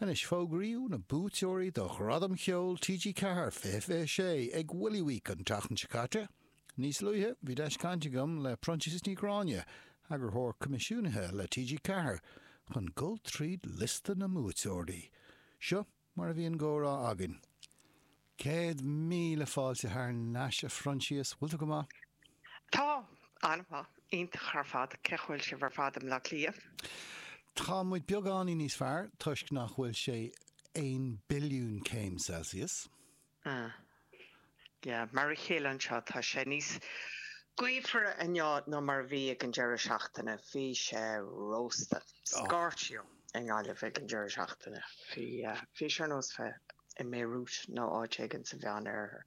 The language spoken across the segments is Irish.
Anois fógraíodh na buaiteoirí do Ghradaim Cheoil TG4 2026 ag Willie Week an tseachtain seo caite. Níos luaithe bhí deis caint agam le Proinsias Ní Ghráinne, Eagarthóir Coimisiúnaithe le TG4, chun dul tríd liosta na mbuaiteoirí. Seo mar a bhí an gcomhrá againn. Céad míle fáilte thar n-ais, a Phroinsias. Bhfuil tú go maith? Tá. An-mhaith. Iontach ar fad. Cén chaoi bhfuil sibh ar fad i mBleá Cliath? Tá muid beagáinín níos fearr toisc nach bhfuil sé aon billiún céim Celsius. Ah. Yeah. Mar a chéile anseo tá sé níos gaofar inniu ná mar a bhí ag an deireadh seachtaine. Bhí sé rósta. Scorchio. i nGaillimh ag an deireadh seachtaine. Bhí sé ar nós bheith i mBeirut nó áit éigin sa Mheán Oirthear.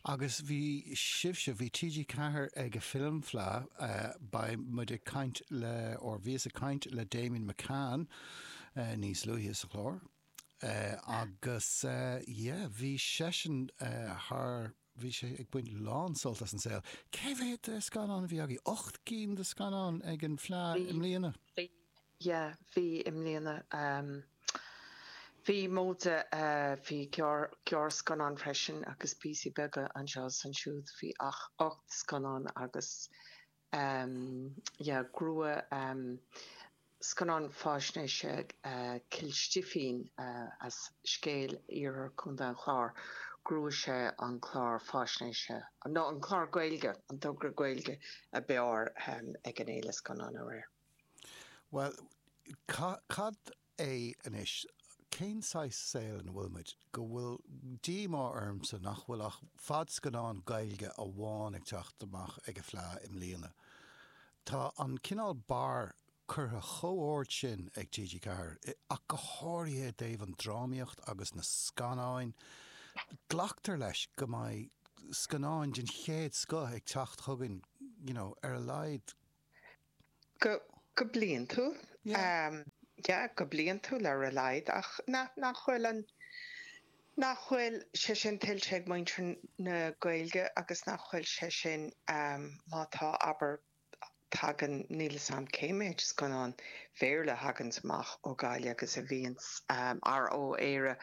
Agus bhí sibhse, bhí TG Ceathair ag an Film Fleadh, beidh muid ag caint le, or bhíos ag caint le Damian McCann níos luaithe sa chlár agus yeah, bhí seisean thar, bhí sé ag baint lán-sult as an saol. Cé mhéad de scannáin a bhí agaibh? Ocht gcinn de scannáin ag an Fleadh i mbliana. Bhí, bhí, yeah, bhí i mbliana. Bhí móide, bhí gearr, gearrscannáin freisin agus píosaí beaga anseo is ansiúd. Bhí ach ocht scannán agus um yeah ghnóthaigh um scannán faisnéise Cill Stifín as scéal iarthar Chontae an Chláir ghnóthaigh sé an clár faisnéise nó an clár Gaeilge an togra Gaeilge ab fhearr ag an Fhéile Scannán aréir. Bhuel cad é anois, cén saghas saoil ina bhfuil muid, go bhfuil díomá ormsa nach bhfuil ach fadscannán Gaeilge amháin ag teacht amach ag an Fleadh i mbliana. Tá an cineál barra curtha chomh ard sin ag TG Ceathair, ach go háirithe i dtaobh an drámaíocht agus na scannáin, glactar leis go mbeidh scannáin den chéad scoth ag teacht chugainn, you know, ar a laghad. Go bliantúil, yeah, go bliantúil ar a laghad, ach nach bhfuil an, nach bhfuil sé sin tuillte ag muintir na Gaeilge agus nach bhfuil sé sin, má tá, abair, tagann, níl 'fhios a'm cé mhéad scannán Bhéarla a thaganns amach ó Gaillimh agus a bhíonns, or ó Éire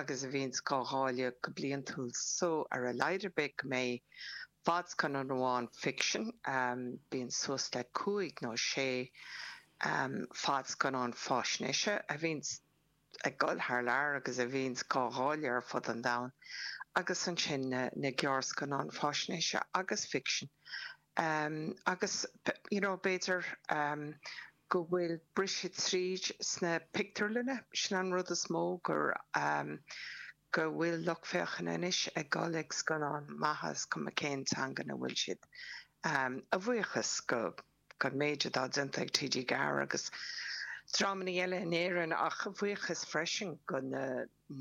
agus a bhíonns dhá dháileadh go bliantúil, so ar a laghad ar bith go mbeidh Fadscannán amháin ficsin, bíonn suas le cúig nó sé fadscannán faisnéise a bhíonn ag gol thar lear agus a bhíonns gá ndáileadh ar fud an domhain, agus ansin na gearrscannáin faisnéise agus ficsin. Agus, you know, b'fhéidir go bhfuil briseadh tríd sna pictiúrlanna, sin an rud is mó gur go bhfuil lucht féachana anois ag gol ag scannáin maithe is cuma cén teanga ina bhfuil siad, a bhuíochas go go mhéid atá déanta ag TG4 agus drámaí eile in Éirinn, ach a bhuíochas freisin go na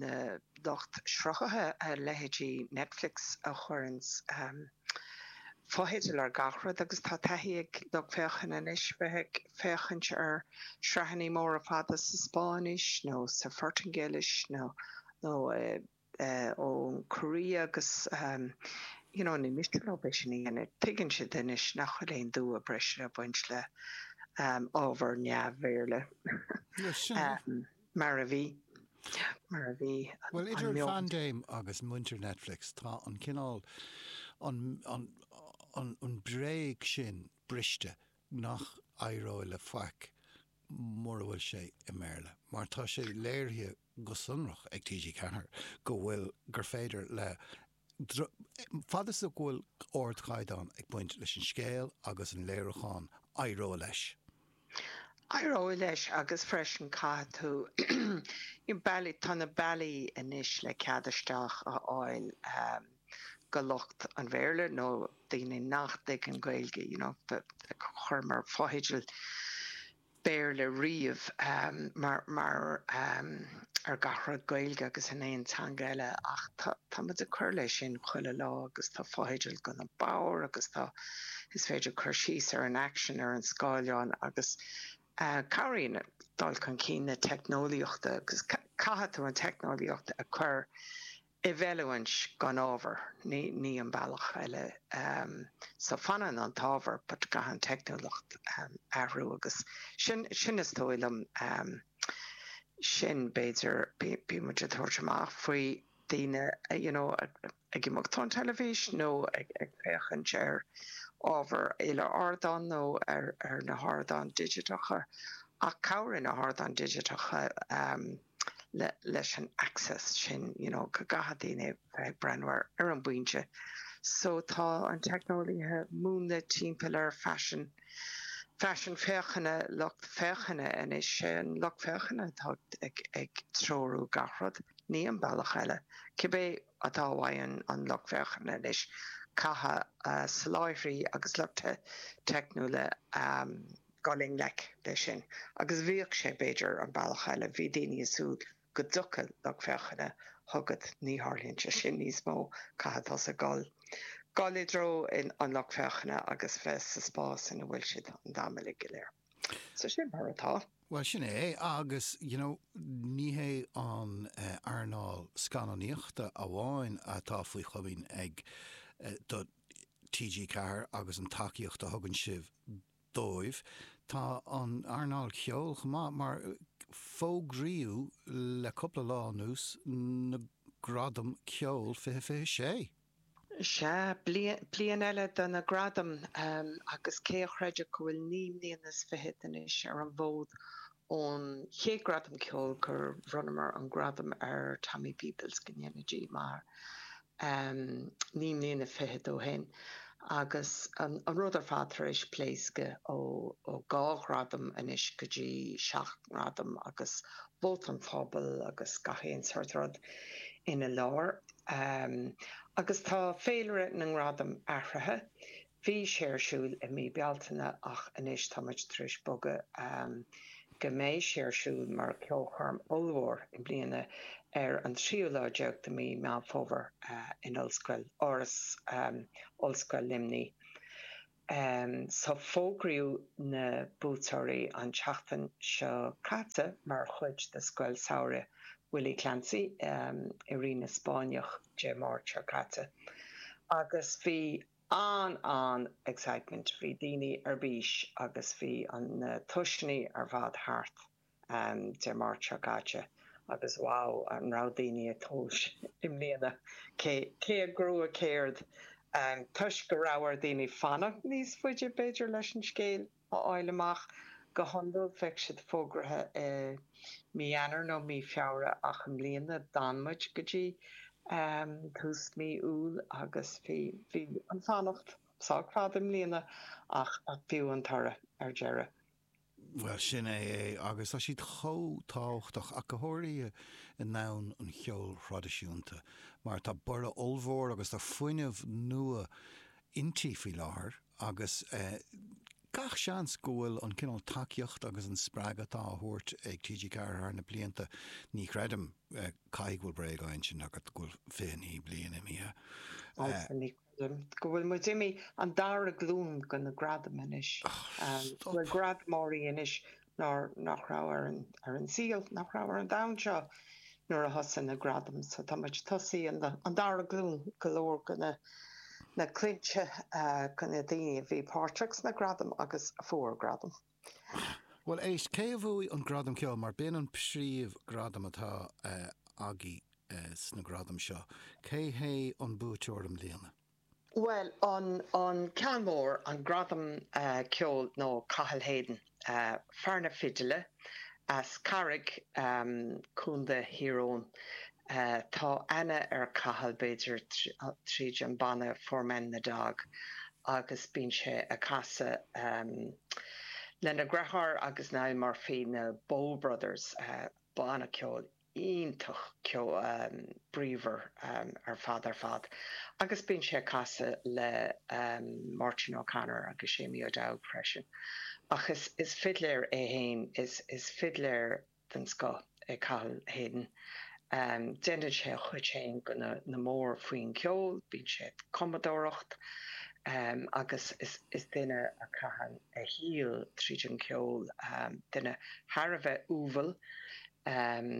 na lucht sruthaithe a leithéidí Netflix a chuireanns. fotheidil ar gach rud agus tá taithí ag lucht féachana anois bheith ag féachaint ar shraitheanna móra fada sa Spáinnis nó sa Phortaingéilis nó ón gCóiré agus you know ní miste leo é sin a dhéanamh. Tuigeann siad anois nach bhfuil aon dua breise ag baint le ábhar neamh-Bhéarla. Mar a bhí. Mar a bhí. Bhuel, idir an phaindéim agus muintir Netflix, tá an cineál, an bhréag sin briste nach n-éireoidh le faic mura bhfuil sé i mBéarla, mar tá sé léirithe go sonrach ag TG4 go bhfuil, gur féidir le Fad is go bhfuil ardchaighdeán ag baint leis an scéal agus an léiriúchán, éireoidh leis. Éireoidh leis agus freisin caithfidh tú, tá na bealaí anois le cead isteach a fháil go lucht an Bhéarla nó daoine nach dtuigeann Gaeilge, you know, chuireamar fotheidil Béarla riamh mar ar gach rud Gaeilge agus in aon teanga eile ach tá muid ag cur leis sin chuile lá agus tá fotheidil go na bodhair agus tá is féidir cur síos ar an aicsean ar an scáileán agus cabhraíonn dul chun cinn na teicneolaíochta agus caithfidh tú an teicneolaíocht a chur i bhfeiliúint gan ábhar, ní ní an bealach eile ehm so fanann an t-ábhar but go gcaitheann teicneolaíocht ehm athrú agus sin sin is dóigh liom ehm sin b'fhéidir bí bíonn muid ag tabhairt amach faoi daoine you know ag imeacht ón teilifís nó ag ag féachaint ar ábhar il-ardáin nó ar ar na hardáin dhigiteacha ach chabhraigh na hardáin dhigiteacha ehm leis an access sin you know go gcaithfidh daoine a bheith ag breathnú air ar an bpointe so tá an teicneolaíocht á múnlú timpeall ar faisean, faisean féachana lucht féachana anois sé an lucht féachana atá ag, ag treorú gach rud ní an bealach eile cibé atá uaidh an, an lucht féachana anois caithfidh uh, soláthraí agus lucht teicniúla um, dul i ngleic leis sin. Agus bhíodh sé, b'fhéidir, an bealach eile, bhí daoine ag súil go dtiocfadh lucht féachana chugat, ní tharlaíonn sé sin níos mó, caithfidh tusa dul, dul i dtreo an lucht féachana agus bheith sa spás ina bhfuil siad, an dream uilig go léir. So sin é mar atá. Bhuel, sin é é. Agus, you know, ní hé an earnáil scannánaíochta amháin atá faoi chomaoin ag TG4 agus an tacaíocht a thugann sibh dóibh. Tá an earnáil cheoil chomh maith, mar fógraíodh le cúpla lá anuas, na Gradaim Ceoil 2026. Sea, bliain eile do na gradaim, agus cé a chreidfeadh go bhfuil naoi mbliana is fiche é anois ar an bhfód Ón chéad Gradam Ceoil gur bhronnamar an gradam ar Tommy Peoples go ndéana Dia a mhaith air, naoi mbliana fichead ó shin, agus an rud ar fad tar éis pléascadh ó dhá ghradam anois go dtí seacht ngradam agus vóta an phobail agus gach aon sórt rud ina lár. Agus tá féilire na ngradam athraithe. Bhí sé ar siúl i mí Bealtaine ach anois tá muid tar éis bogadh go mbeidh sé ar siúl mar cheolchoirm ollmhór i mbliana ar an tríú lá déag de mhí Meán Fómhair in Ollscoil, Áras Ollscoil Luimnigh. So fógraíodh na buaiteoirí an tseachtain seo caite mar chuid de Scoil Samhraidh Willie Clancy i Rinn na Spáinneach Dé Máirt seo caite agus bhí an-an excitement, bhí daoine ar bís agus bhí na tomhaiseanna ar fad thart Dé Máirt seo caite agus wow an raibh daoine ag tomhas i mbliana cé cé a ghnóthaigh céard toisc go raibh ar daoine fanacht níos faide b'fhéidir leis an scéal. a fháil amach. Go hiondúil, bheadh siad fógraithe i Mí Eanáir nó Mí Feabhra ach i mbliana, d'fhan muid go dtí tús Mí Iúil agus bhí an fanacht sách fada i mbliana ach b'fhiú an toradh ar deireadh. Bhuel, sin é é agus tá siad chomh tábhachtach, ach go háirithe i ndomhan an cheoil thraidisiúnta, mar tá borradh ollmhór agus tá fuinneamh nua inti faoi láthair agus gach seans go bhfuil an cineál tacaíocht agus an spreagadh atá á thabhairt ag TG4 thar na blianta, ní chreidim, caithfidh go bhfuil bréag á insint agat go bhfuil 29 bliain imithe. Agus ní chreidim go bhfuil muid imithe an dara glúin de na gradaim anois, go bhfuil gradamóirí anois nach raibh ar an saol, nach raibh ar an domhan seo, nuair a thosaigh na gradaim is tá muid tosaithe an dara glúin, go leor de na clainne de na daoine a bhí páirteach sna gradaim agus a fuair gradam. Bhuel, éist, cé a bhuaigh an Gradam Ceoil, mar b'in an príomh gradam atá agaibh sna gradaim seo, cé hé an buaiteoir i mbliana? Bhuel, an ceann mór, an gradam ceoil ná Cathal Hayden, fear na fidile as an gCarraig, Co Thír Eoghain, tá aithne ar Chathal b'fhéidir tríd an banna Four Men and a Dog agus bíonn sé ag casadh lena dheartháir agus Niall Murphy na Bow Brothers, banna ceoil iontach bríomhar ar fad ar fad agus bíonn sé ag casadh le Máirtín O'Connor agus Seamie O'Dowd freisin ach is fidléir é fhéin, is fidléir den scoth é Cathal Hayden. Déanann sé a chuid fhéin go han-mhór faoin gceol, bíonn sé ag cumadóireacht agus is duine a chaitheann a shaol tríd an cheol, duine thar a bheith umhal. Amm,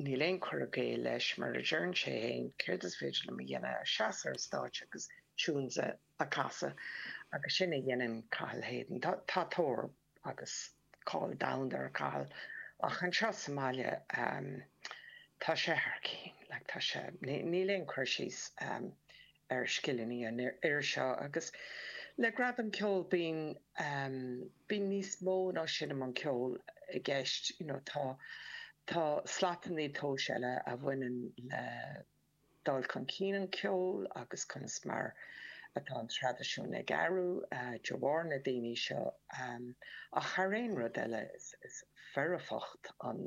níl aon chur i gcéill leis, mar a deireann sé fhéin, céard is féidir liom a dhéanamh ach seas ar an stáitse agus tunes a chasadh, agus sin a dhéanann Cathal Hayden. Tá tóir agus cáil domhanda ar Chathal, ach anseo sa mbaile, amm, tá sé thar cinn, like, tá sé, níl aon chur síos, amm, ar scileanna an fhir seo agus le Gradam Ceoil bíonn bíonn níos mó ná sin i mbun ceoil i gceist you know tá tá slatannaí tomhais eile a bhaineann le dul chun cinn an cheoil agus conas mar atá an traidisiún ag athrú de bharr na daoine seo ach thar aon rud eile is is foirfeacht san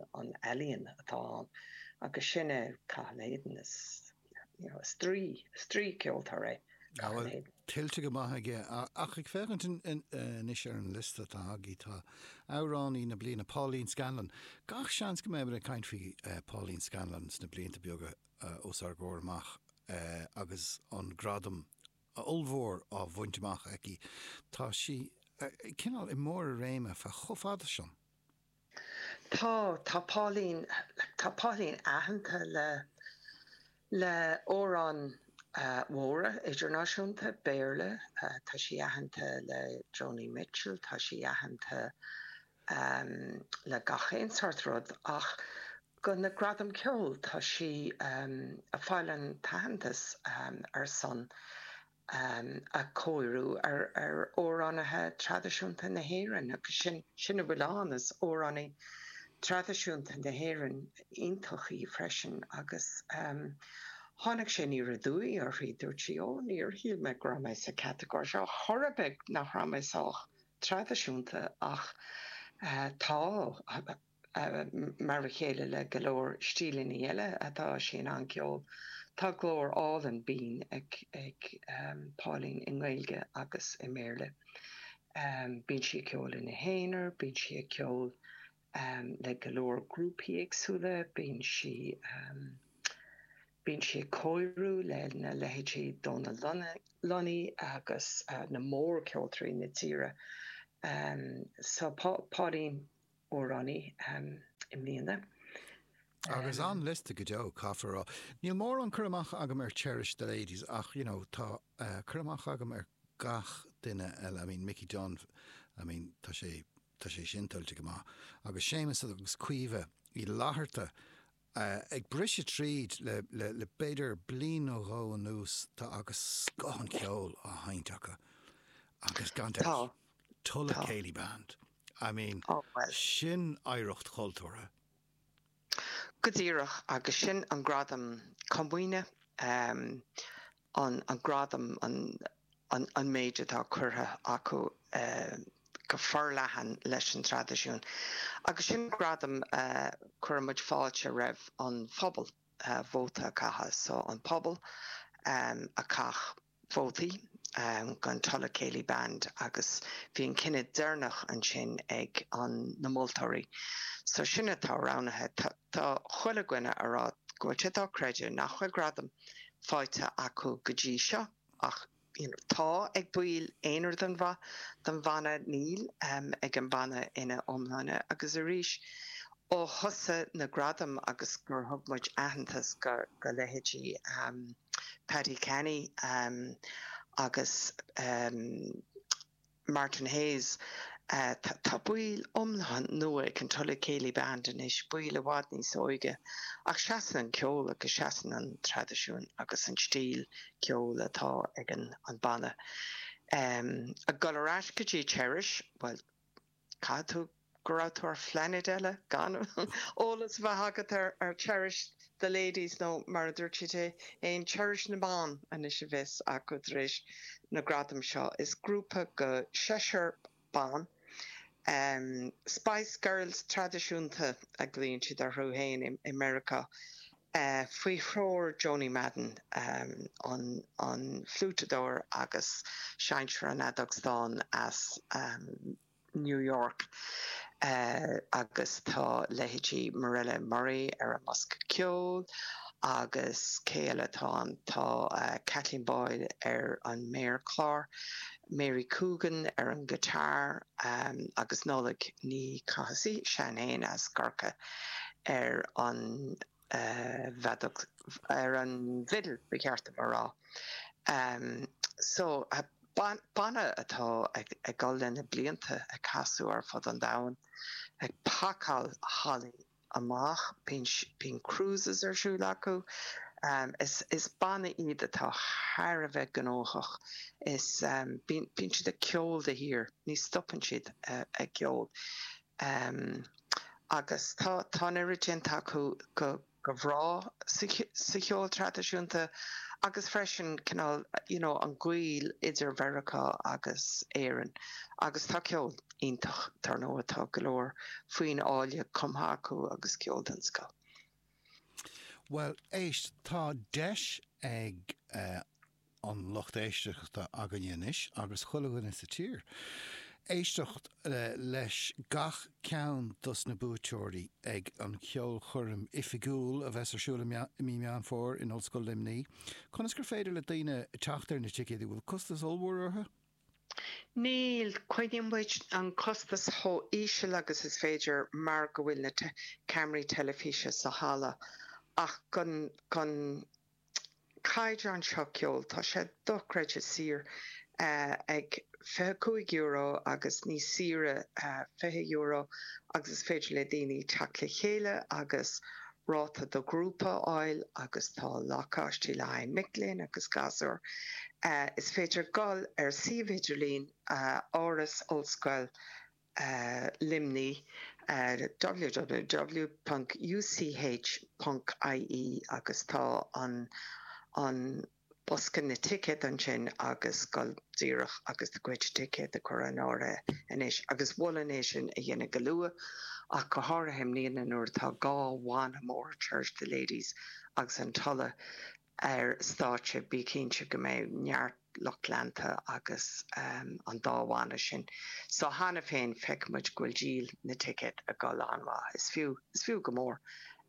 ealaíon atá ann agus sin é Cathal Hayden is Draoi ceoltóir é Cathal Hayden. Tuillte go maith aige. Ach ag féachaint anois ar an liosta atá agaibh tá Amhránaí na Bliana, Pauline Scanlon. Gach seans go mbeidh muid ag caint faoi Pauline Scanlon sna blianta beaga os ár gcomhair amach agus an gradam ollmhór á bhaint amach aici. Tá sí cineál i mbarr a réime chomh fada san. Tá, tá Pauline, tá Pauline aitheanta le, le amhráin mhóra idirnáisiúnta, Béarla, tá sí aitheanta le Joni Mitchell, tá sí aitheanta le gach aon sórt rud ach go, na Gradam Ceoil, tá sí ag fáil an t-aitheantas ar son a chóiriú ar amhránaithe traidisiúnta na hÉireann agus sin a bhfuil ann, is amhránaí traidisiúnta na hÉireann iontach í freisin agus tháinig sé aniar aduaidh uirthi, dúirt sí oh níor shíl mé go raibh mé sa chatagóir seo chor ar bith, nach raibh mé sách traidisiúnta ach tá. Mar a chéile le go leor stíleanna eile atá sí in ann a cheol, tá glór álainn binn ag Pauline i nGaeilge agus i mBéarla. Bíonn sí ag ceol ina haonar, bíonn sí ag ceol le go leor grúpaí éagsúla, bíonn sí bíonn sí ag cóiriú lena leithéidí Donal Lunny agus na mór-cheoltóirí na tíre. So Pauline amhránaí i mbliana. Agus an-liosta go deo, caithfear a rá. Níl mórán cur amach agam ar Cherish the Ladies ach, you know, tá cur amach agam ar gach duine eile, I mean, Mickey Dunne, I mean, tá sé, tá sé sin tuillte go maith. Agus Séamus agus Caoimhe Uí Fhlatharta, Ag briseadh tríd le b'fhéidir bliain nó dhó anuas tá agus scoth an cheoil á sheinnt acu agus gan dabht, Tulla Céilí Band. I mean, sin oidhreacht chultúrtha. Go díreach, agus sin an gradam comaoine an gradam an méid atá curtha acu go forleathan leis an traidisiún agus sin an gradam a chuir muid fáilte roimh an phobal vóta a chaitheamh so an pobal a chaith vótaí gan Tulla Céilí Band agus bhí an cinneadh deireanach ansin ag na moltóirí so sin atá roghnaithe. Tá chuile dhuine a rá go bhfuil sé dochreidte nach bhfuil gradam faighte acu go dtí seo ach tá, ag baill aonair den bhanna, níl ag an bhanna ina iomláine agus arís ó thosaigh na gradaim agus gur thug muid aitheantas do leithéidí Paddy Canny agus. Martin Hayes, Tá baill iomlán nua ag an Tulla Céilí Band anois, baill i bhfad níos óige, ach seasann an ceol agus seasann an traidisiún agus an stíl ceoil atá ag an banna. Ag dul ar ais go dtí Cherish, bhuel, caithfidh tú Go raibh tú ar phlainéid eile gan eolas a bheith agat ar Cherish the Ladies nó mar a dúirt siad fhéin Cherish na mBan anois a bheas acu tar éis na gradaim seo. Is grúpa de sheisear ban, Spice Girls traidisiúnta a ghlaoíonn siad orthu fhéin i Meiriceá, faoi threoir Joanie Madden, an fliúiteadóir agus seinnteoir an fheadóg stáin as Meiriceá. New York agus tá leithéidí Mirella Murray ar an mbosca ceoil agus cé eile atá ann, tá Kathleen Boyle ar an méarchlár, Mary Coogan ar an guitar agus Nollaig Ní Chathasaigh, í sin féin as Corcaigh, ar an. bhfeadóg, ar an bhfidil ba cheart dom a rá. So, banna atá ag dul le na blianta, ag casadh ar fud an domhain, ag pacáil hallaí amach, bíonn cruises ar siúl acu, is banna iad atá thar a bheith gnóthach, bíonn siad ag ceol de shíor, ní stopann siad ag ceol. Ehm. Agus tá, tá an oiread déanta acu go, go breá sa, sa cheol traidisiúnta agus freisin cineál, you know, an gaol idir Meiriceá agus Éirinn agus tá ceol iontach, dár ndóigh, tá go leor foinn áille cumtha acu agus ceol den scoth. Bhuel, éist, tá deis ag, eh, an lucht éisteachta againne anois, agus chuile dhuine sa tír, éisteacht leis gach ceann dos na buaiteoirí ag an cheolchoirm oifigiúil a bheas ar siúl i Mí Meán Fómhair in Ollscoil Luimnigh. Conas gur féidir le daoine teacht ar na ticéid, an bhfuil costas ollmhór orthu? Níl, coinníonn muid an costas chomh íseal agus is féidir mar go bhfuil na ceamaraí teilifíse sa halla ach go caighdeán seo ceoil. Tá sé dochreidte saor ag €25 agus níos saoire €20 agus is féidir le daoine teacht le chéile agus ráta do ghrúpa a fháil agus tá lacáistí le haghaidh mic léinn agus gasúir. Is féidir dul ar suíomh idirlín Áras Ollscoil Luimnigh ar www.uch.ie agus tá an an bosca na dticéad ansin agus dul díreach agus do chuid ticéad a chur in áirithe anois agus mholfainn é sin a dhéanamh go luath ach go háirithe i mbliana nuair atá dhá bhanna mhóra, Cherish the Ladies agus an tOllamh. ar stáitse, bí cinnte go mbeidh neart lucht leanta ag an dá bhanna sin so cheana féin, feiceann muid go bhfuil díol na dticéad ag dul an-mhaith. Is fiú, is fiú go mór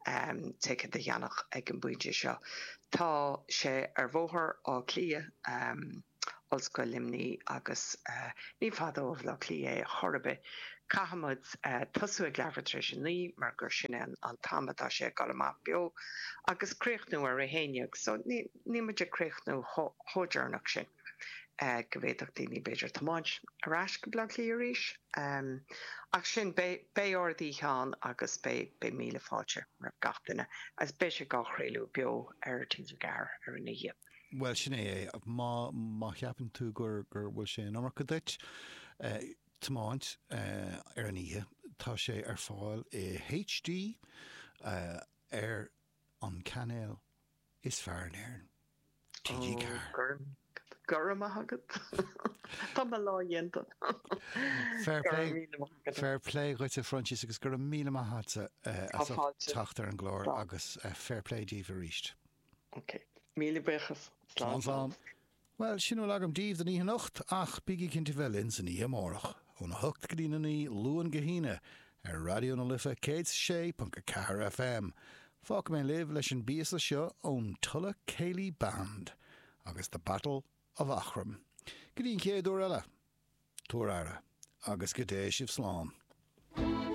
ticéad a cheannach ag an bpointe seo. Tá sé ar Bhóthar Átha Cliath. Ollscoil Luimnigh agus ní fada ó Bhleá Cliath é ar chor ar bith. Caithfimid tosú ag leathuair tar éis a naoi mar gur sin é an t-am atá sé ag dul amach beo agus críochnú ar a haon déag so níl muid ag críochnú chomh deireanach sin go bhféadfadh daoine b'fhéidir tiomáint ar ais go Bleá Cliath arís ach sin beidh ardoíche ann agus beidh míle fáilte roimh gach duine agus beidh sé dhá chraoladh beo ar TG4 ar an oíche. Bhuel, sin é é. Má cheapann tú gur bhfuil sé an iomarca duit tiomáint ar an oíche, tá sé ar fáil i HD ar an cainéal is fearr in Éirinn, TG4. Go raibh maith agat. Tá mo lá déanta. Fair play dhuit a Phroinsias agus go raibh míle maith agatsa as ucht teacht ar an gclár agus fair play daoibh arís. Ok. Míle buíochas. Slán slán. Bhuel, sin a bhfuil agam daoibh don oíche anocht, ach bígí cinnte bheith linn san oíche amárach, óna hocht go dtí a naoi, Luan go hAoine, ar Raidió na Life 106.4 FM. Fágfaidh mé libh leis an bpíosa seo ón Tulla Céilí Band agus The Battle of Eachroim. Go dtí an chéad uair eile, tugaigí aire, agus go dté sibh slán.